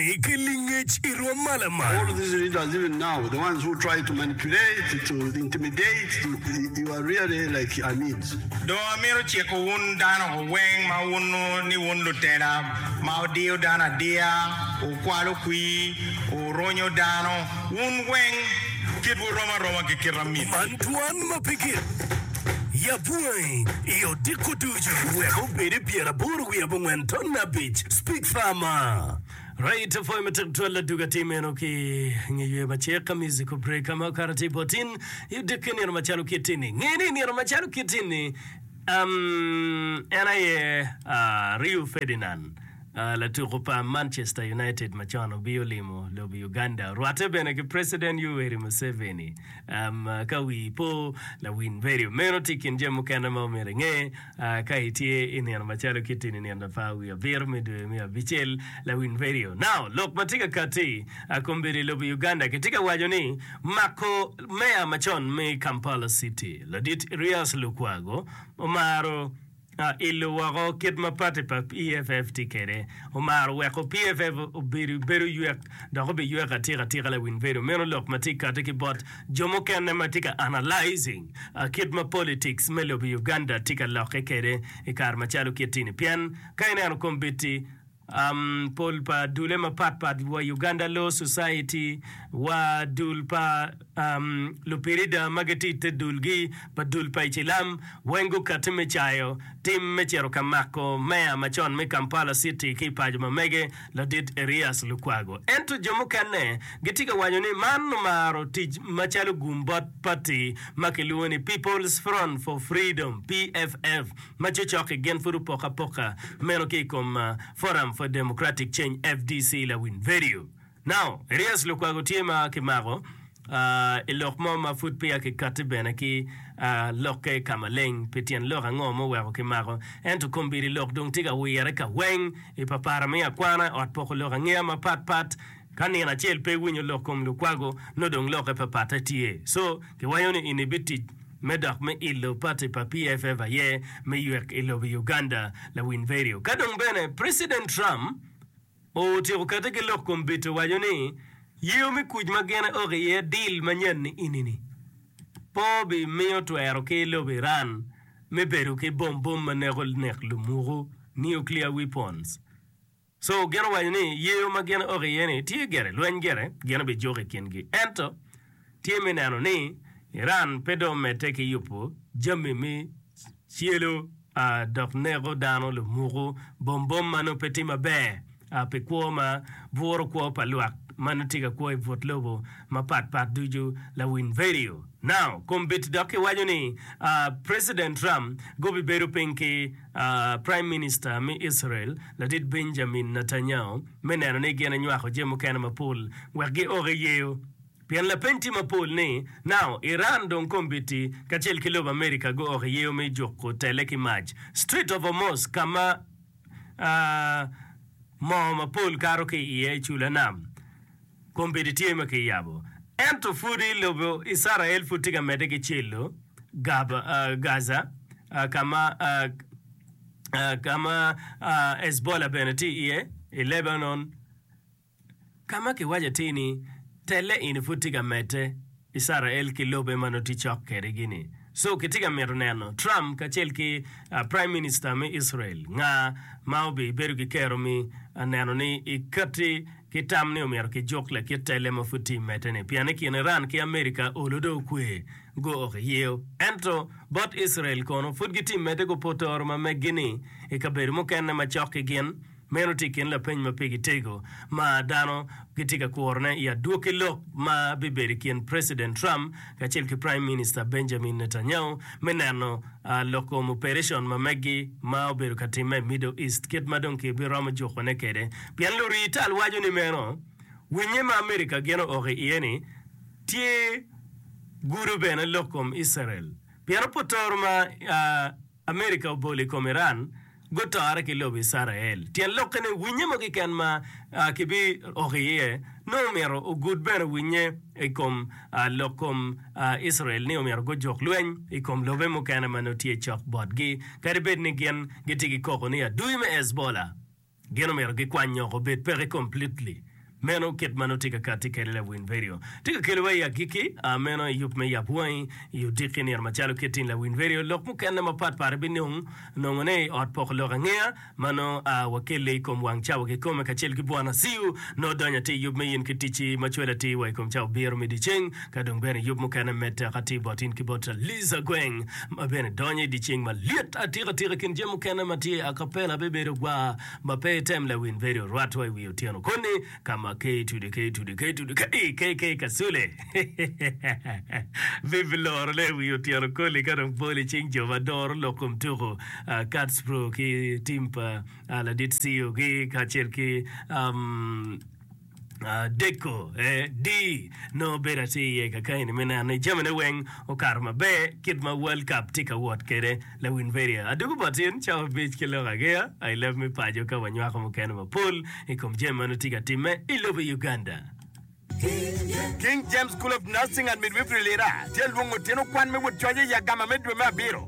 ki lingec i rwom ma lamal. Dong amito ciko wun dano weng ma wuno ni wun lutela ma wudiyo dano adiya, wukwalo kwir, wuronyo dano, wun weng kit wurom aroma ki kite amin. Antwan ma pe gin Ya bwangi i odiko ducu wek obed i pyeraboro wiye abongwen ton abic. Speak Farmer. Right to Farm tek twal ladug atir meno ki nge yweyo ma cek ka musical break ma okato tye bot in i odiki nino macalo kit ini. Nge ni nino macalo kit ini um, en aye uh, Rio Ferdinand uh, latuku pa Manchester United macon obio limo lobo Uganda, rwatte bene ki President Yoweri Museveni. Ka wii po, lawiny bedo. Meno tye i kin jami mukene ma omyero inge. Ka itye i nino macalo kit in inino lapar wiye abiro me dwe me abicel, lawiny bedo. Now, lok ma tye ka katti kombeddi i lobo Uganda kitye ka waco ni mako Meya macon me Kampala City, Ladit Erias Lukwago omaro. Ilo woko kit ma pati pa PFF tye kwede. Omaro weko PFF obedo bedo ywek dok obiywek atika atika lawiny bedo. Meno lok ma tye kati ki bot jo mukene ma tye ka analyzing kit ma politics me lobo Uganda tye ka lokke kwede i kare macalo kit-ti-ni. Pien ka ineno kombit-ti, Pol pa dulle mapat pat wa Uganda Law Society wa dul pa lupirida ma gitye i te dulgi pa dul pa icilam weng gukati me cayo tim me cito ka mako meya macon me Kampala City ki i paco ma mege ladit Erias Lukwago. Ento jo mukene gitye ka waco ni man omaro tic macalo gum bot pati ma kilwongo ni People's Front for Freedom, PFF, ma cocok-ki gin pud opok apoka meno ki i kom Forum for Democratic Change, FDC, Lawin Verio Nao Erias Lukwago tye ma kimako i lok mo ma pud peya kikatti bene ki lokke ka maleng pi tyen lok ango ma oweko kimako ento kombeddi lok dong tye ka wirre ka weng i papara me akwana ot poko lok angeya mapat pat. Ka nino acel pe iwinyo lok kom lukwago, nongo dong lokke pa patte tye. Co, kiwayo ni in ibitic me dok me ilo party pa PFF aye me ywek i lobo i Uganda, Lawiny Verio. Ka dong bene President Trump otyeko kette ki lok kom bite owaco ni yeyo me kuc ma gin eok iye deal ma nyanni ini-ni pe obi miyo twero ki lobo Iran me bedo ki bom bom ma neko nek lumuku, nuclear weapons. Co gin owaco ni yeyo ma gin ok iye ni tye gire lweny gire gin bijuko i kingi ento tye me neno ni Iran pe dong omedde ki yubo jami me celo dok neko dano lumuko bom bom ma nongo pe tye maber pi kwo ma buro kwo pa lwak ma nongo tye ka kwo i but lobo mapat pat ducu lawiny vedio now kombeddi dok kiwaco ni President Trump gubibedo piny ki Praim Minista me Icrael, Ladit Benjamin Netanyahu, me neno ni gin enywako jami mukene mapol wek giok i yeyo. Pien lapeny tye mapol ni, Nao Iran dong kombeddi kacel ki lobo Amerika guok i yeyo me juko tele ki mac, Strait of Hormuz ka ma moo mapol kato ki iye i cula nam, Kombeddi tye ma kiyabo, ento pwod i lobo Icrael pwod tye ka medde ki celo Gaza, ka ma ka ma Hezbollah bene tye iye i Lebanon, ka ma kiwaco atir ni telle eni pwod tye ka medde. Icrael ki lobe ma nongo tye cok kedegi-ni. So kitye ka mito neno Trump kacel ki Prime Minister me Icrael nga ma obibedo ki kero mi neno ni ikatti ki tam ni omyero kijuk lakit telle ma pud tye imedde-ni pien i kin Iran ki America olo dong okwe go ok iyeo. Ento bot Icrael kono pud gitye imedde gupoto oro ma meggi-ni ikabedo mukene ma cok ki gin. Meno tye i kin lapeny ma pigi tego ma dano gitye ka kurone i adwoki lok ma bibedo i kin Preciden Trump kacel ki Praim Minista Benjamin Netanyahu me neno loko muperecon ma meggi ma obedo ka timme i Middle East kit ma dong ki biromo jukone kede pien lurii tal waco ni meno winye ma America geno oko i iye ni tye gudo bene lok kom Icerel pien opotoro ma America obolo i kom Iran gutore ki lobo Icrael. Tyen lokke ni winye mogo keken ma kibi oko iye nongo omyero ogud bene winye i kom lok kom Icrael ni omyero gujuk lweny i kom lobe mukene ma nongo tye cok botgi kadi bed ni gin gitye ki koko ni adui me Hezbollah Gin omyero gikwany nyok obed peke completely. Meno kit ma nongo tye ka katti kede lawiny vedio. Tye ka keliwa i agikki, aa meno i yub me yap wangi, i odikki nino macalo kit tin lawiny vedio, lok mukene mapat pat ibinong nongo ne i ot poko lok angeya ma nongo aa wakelle i kom wang cawa kikome kacel ki Bwana Siu. Nongo donyo ati i yub me in ki ticci ma cwalo atir wa i kom cawa biro me dyeceng. Ka dong bene yub mukene med tek atir bot in ki bot Liza Gweng ma bene donyo i dye ceng ma lit atika tika i kin jami mukene ma tye Acapella bibedo gwaa ma pe item lawin bedo orwatwa i wi otyeno koni ka ma ke itude ke itude ke itude ke i ke ke kacule bibi loro ne i wi otyeno koli ka dong pol i cing jo ma doro lok kom tuku Kats Pro ki tim pa Ladit Ceo gi kacel ki um, Adeko, AD, nongo obedo atir iye ka kayeni me neno ni jamine weng okato maber kit ma World Cup tye ka wot kwede. Lawin Veria, adwogo boti in cawa abic ki lok agiya I leb me paco ka wanywako mukene mapol I kom jami ma nongo tye ka timme I lobo Uganda. King James School of Nursing and Midwifery Lira tye lwongo tyen okwan me wod coc i agama me dwe me abiro.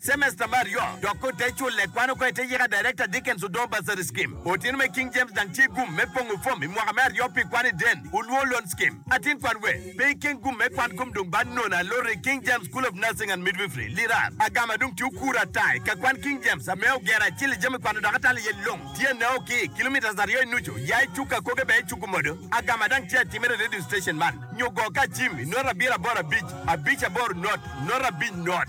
Cemesta me aryo dok ko te culle kwano ko ite yika Director Dickens Odoo Bursary Scheme. Otino me King James dang tye gum me pongo form i mwaka me aryo pi kwan i Den Uluo Loan Scheme. Atin kwan we pe i ken gum me kwan kom dong ba nono aloro i King James School of Nursing and Midwifery, Lirar. Agama dong tye okura ata i ka kwan King James ame ogero acel i jami kwano dok atalo iye long tye nao ki i kilometres aryo i nucu ya i cuk akoge bene i cuk modo. Agama dang tye atimere i radio station man nyo go ka cim i note abiro aboro abic abic aboro note note abic note.